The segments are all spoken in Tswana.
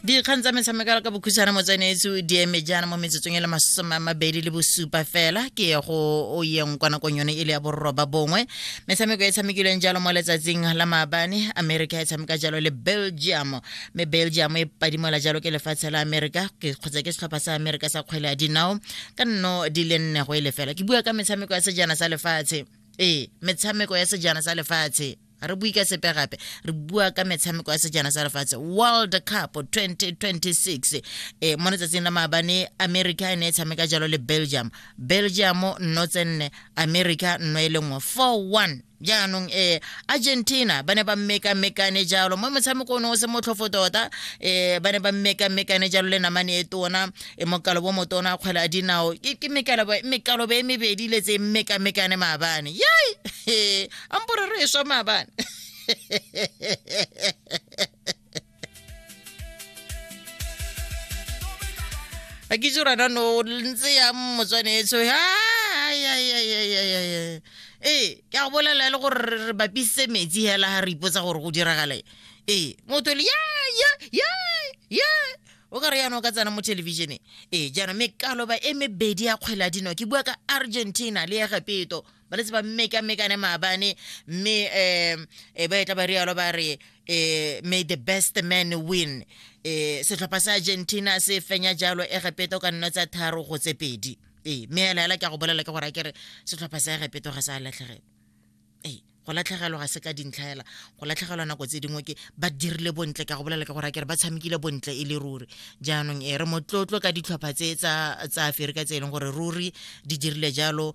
dikgang tsa metshamekelo ka bokhutshwana mo tsenetso di eme jaana mo metsotsong e le masome a mabedi le bosupa fela ke ye go o yeng kwa nakong yone e le ya bororoba bongwe metshameko e tshamekilweng jalo mo letsatsing la maabane america e tshameka jalo le belgium mme belgium e padimola jalo ke lefatshe la america ke- kgotsa ke setlhopha sa america sa kgwele ya dinao ka nno di le nne go e lefela ke bua ka metshameko ya sejana sa lefatshe ee metshameko ya sejana sa lefatshe ga re bue ka sepe gape re bua ka metshameko ya sejana sa lefatshe world cup 2026 e mo letsatsing la maabane america e ne e tshameka jalo le belgium belgium nno tse nne america nno e le nngwe 4-1 jaanong eh argentina ba ne ba mmekamekane jalo mo motshameko o ne o se motlhofo tota eh ba ne ba mmekamekane jalo le namane e tona e mokalo bo motona kgwele a dinao ke ke mekalobe mekalobe e mebedi le tse mmekamekane maabane yai a mpore re eswa maabane a ke itse rana no ntse ya motswanetso ee ke a go bolela le gore re bapisitse metsi hela ga re ipotsa gore go diragale ee motho le ya ya ya ya o ka re yana o ka tsena mo thelebišeneng ee jaanong mekaloba e mebedi ya kgwele ya dino ke bua ka argentina le ya gapeto ba letse ba mmekamekane maabane mme um e ba e tla ba rialo ba re um may the best man win um setlhopha sa argentina se fenya jalo egepeta o ka nna tsa tharo go tse pedi ee mme ela ela ke a go bolela ke gore a kere setlhopha sa egepeto ga sa latlhegela ee go latlhegelwa ga se ka dintlhaela go latlhegelwa nako tse dingwe ke ba dirile bontle ka go bolela ke gore a kere ba tshamekile bontle e le ruri jaanong e re motlotlo ka ditlhopha tse tsa aferika tse e leng gore ruri di dirile jalo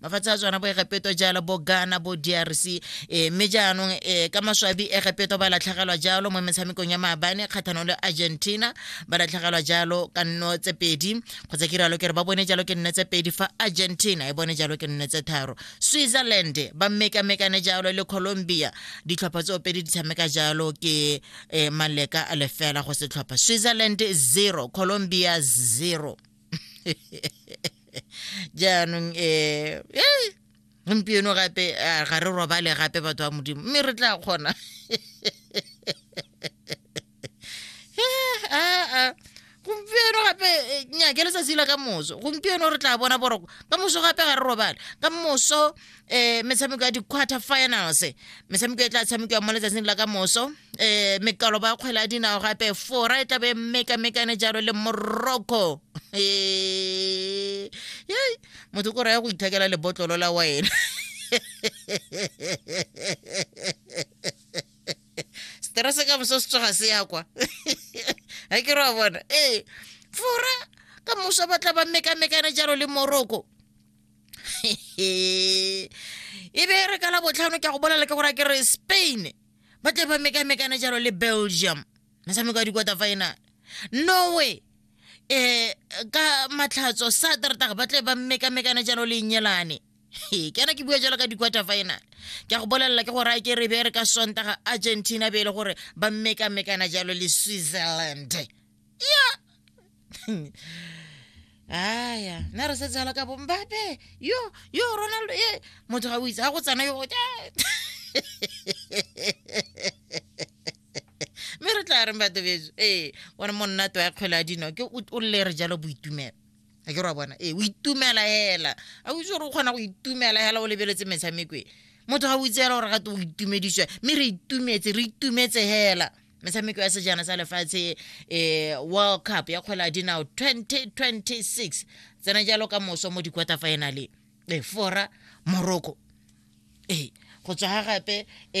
mafatshe a tswana bo egepeto jalo bo ghana bo drc um eh, mme jaanong um ka maswabi egepeto ba latlhegelwa jalo mo metshamekong ya maabane kgatlhanong le argentina ba latlhegelwa jalo ka nno tse pedi kgotsa ke rialo ke re ba bone jalo ke nne tse pedi fa argentina e bone jalo ke nne tse tharo switzerland ba mmekamekane jalo le colombia ditlhopha tse opedi di tshameka jalo ke um maleka a lefela go setlhopha switzerland zero colombia zero jaanong um gompieno gape eh, ga re robale gape batho ba modimo mme re tla kgona gompieno gape eh, nyake letsatsi la ka moso gompieno re tla bona boroko ka moso gape ga re robale ka moso eh metshameko ya di-quarter finals metshameko e tla tshamekiwa mo letsatsing la ka moso eh mekalo ba kgwele ya dinao gape fora e tlabe mekamekane jalo le morocco eh yei motho ko raya go ithekela lebotlolo la wena stress ka moso se tsoga se ya kwa ga ke re wa bona ee fora ka moso ba tla ba mekamekane jalo le morocco e be re ka la botlhano ke a go bolela ke gore ke re spain ba tle ba mekamekane jalo le belgium metshameko ya di-quarter final norway eh ka matlhatso saterdag ba tle ba mekamekane jalo le nyelane ke ana ke bua jalo ka di-quarter final ke a go bolelela ke gore a ke re be re ka sontaga argentina be e le gore ba mekamekana jalo le switzerland ya aya nna re setse ala ka bo mbape yo yo ronaldo e motho ga o itse ga go tsena yo mme re tla reng batho beso ee one monna to ya kgwele a dino ke o- o lle re jalo boitumelo a ke ra bona ee o itumela hela a o itse gore o kgona go itumela hela o lebeletse metshameko e motho ga o itse hela gore gate o itumediswa mme re itumetse re itumetse hela metshameko ya sejana sa lefatshe um world cup ya kgwele ya dinao 2026 tsena jalo ka moso mo di-quarter finale e fora morocco ee go tswa ga gape um